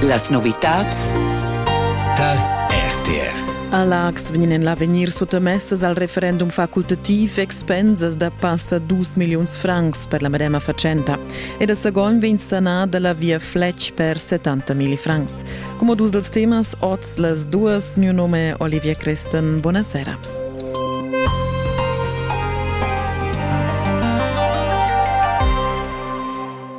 Las novitads tar RTR. A Laax vegnan l'avegnir suttamessas al referendum facultativ expensas da passa 2 milliuns francs per la medema fatschenta e da Sagon vegn sanada la via Fletch per 70.000 francs. Come dus dels temas, oz las duas, mio nome Olivia Christen, buonasera.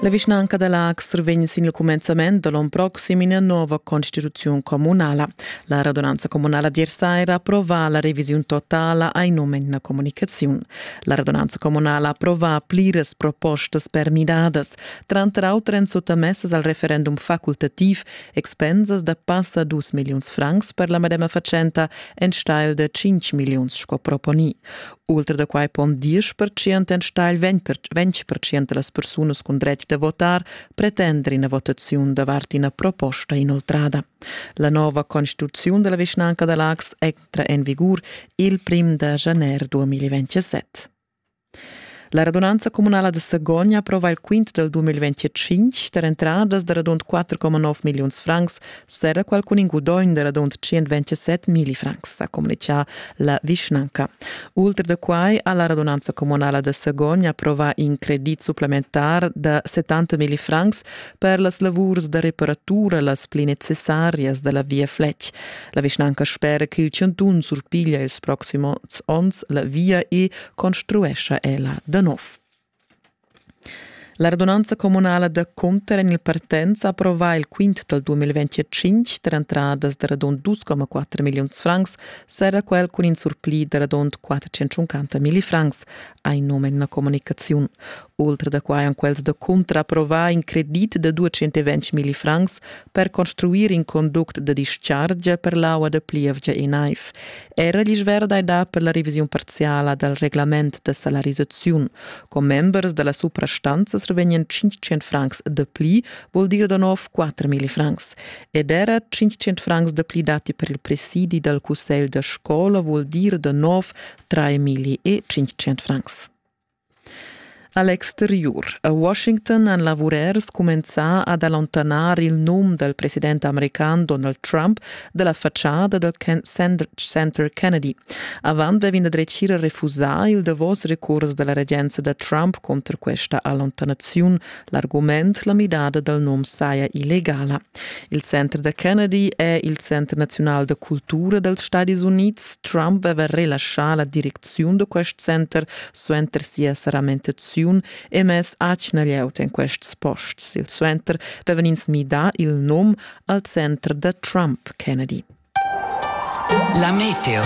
La vischnanca da Laax survegn sin il cumenzament da l'onn proxim ina nova constituziun communala. La radunanza communala d'Iersair approva la revisiun totala ai num en la comunicaziun. La radunanza communala approva pliras propostas per midadas, tranter auter en suttamessas al referendum facultativ expensas da passa dus milliuns francs per la medema fatschenta enstagl da 5 milliuns sco proponì. Ultra da quai pon 10% enstagl 20% da las persunas cun dretg da votar pretender ina votaziun davart ina proposta inoltrada. La nova constituziun da la vischnanca da Lax entra en vigur il prim da januar 2027. La radunanza comunala de Sagogna aprova il quint del 2025 per entradas da radund 4,9 milliuns francs Serra qualcun in gudogn da radund 127 mili francs, ha communichà la vischnanca. Ultra da quai ha la radunanza communala da Sagogn approvà in credit supplementar da 70 mili francs per las lavurs da reparatura las pli necessarias da la Via Fletch. La vischnanca spera ch'il chantun surpiglia ils proxims onns la via e construescha ella da nov. La radunanza communala da Cunter en il Partenz ha approvà il quint dal 2025 per entradas da radund 2,4 milliuns francs, serra quel cun in surpli da radund 450 millifrancs, ha in num en una comunicaziun. Oltre da quai han quels da Cunter approvà in credit da 220 millifrancs per construir in conduct da dischargia per l'aua da plievgia e naiv. Era l'isch verda è dà per la revisiun parziala dal reglament da salarisaziun. Con members da la suprastanza revegnien 500 francs de pli, vuol dir da nov 4.000 francs. Ed era 500 francs de pli dati per il presidi dal cussegl da scola vuol dir da nov 3.500 francs. A l'exteriur a Washington han lavurers cumenzà ad allontanar il num dal president american Donald Trump da la fatschada dal center Kennedy. Avant vevin da dretgir refusà il davos recurs da la regenza da Trump conter questa allontanaziun, L'argument la midada dal nom saja illegala. Il center da Kennedy è il Center naziunal da cultura dals Stadis Unids. Trump aveva relaschà la direcziun da quest center suenter sia saramentaziun e mess atgna glieud en quests posts. Il suenter avevan ins midà il nom al center da Trump Kennedy. La meteo.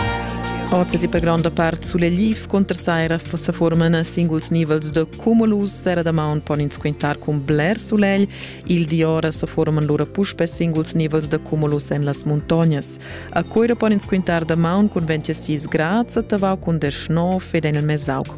Oz è per gronda part sulegliv cunter saira sa forman singuls nivels da cumulus. Sera da maun pon ins quintar cun bler sulegl. Il di ora sa forman lura puspe singuls nivels da cumulus en las muntognas. A Coira pon ins quintar da maun cun 26 grads, a Tavau cun 19 ed en il Mesauc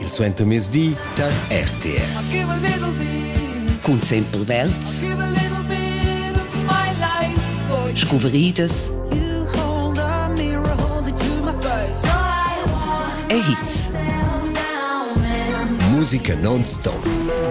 il suentermezdi tar RTR. Cun sempre Welts, scuvriedas e hits. Musica non-stop.